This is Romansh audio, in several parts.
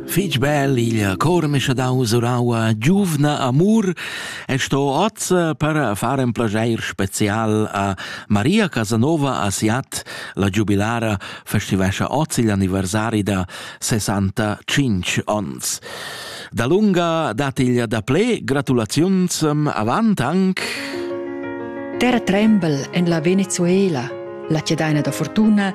Fich bel il cor m'è scha dau suraua giuvna amur e sto oz per far ün plajair special a Maria Casanova a Siat. La giubilara festivescha oz il anniversari da 65 ons. Dalunga dat il daplé gratulaziuns avant anc. Terra trembel en la Venezuela, la cedaina da fortuna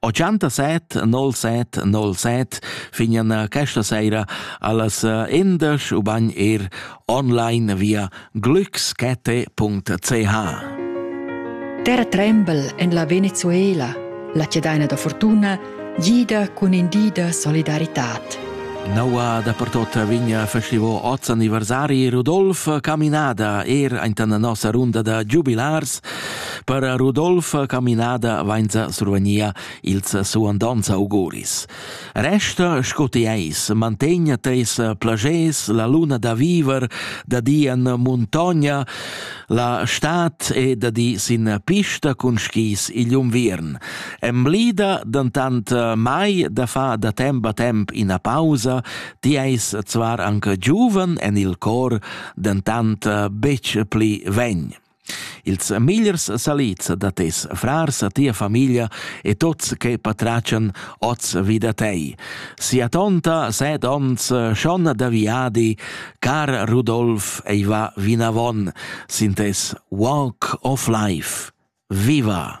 87 07 07 fignan eh, questa sera allas eh, indesch u bagn er online via glückskette.ch Terra tremble en la Venezuela, la cedaina da fortuna, gida cun indida solidaritat. Noua da pertot vigna festivo oz anniversari Rudolf Caminada er aintan nossa runda da giubilars Per Rudolf caminada vainsa survgnia ils suandants auguris. Resta sco ti eis, mantegna teis plagers la luna da viver, da di en muntogna, la stat e da di sin pista cun skis igl unviern. Emblida dantant mai da fa da temp a temp ina pausa, ti eis zvar anche giuven en il cor, dantant betg pli vegn. Ils migliers salids da tes frars, tia famiglia e tuts che patratgan oz vi da tei. Sia tonta set onns, schon da viadi, car Rudolf ei va vinavon sin tes Walk of Life. Viva!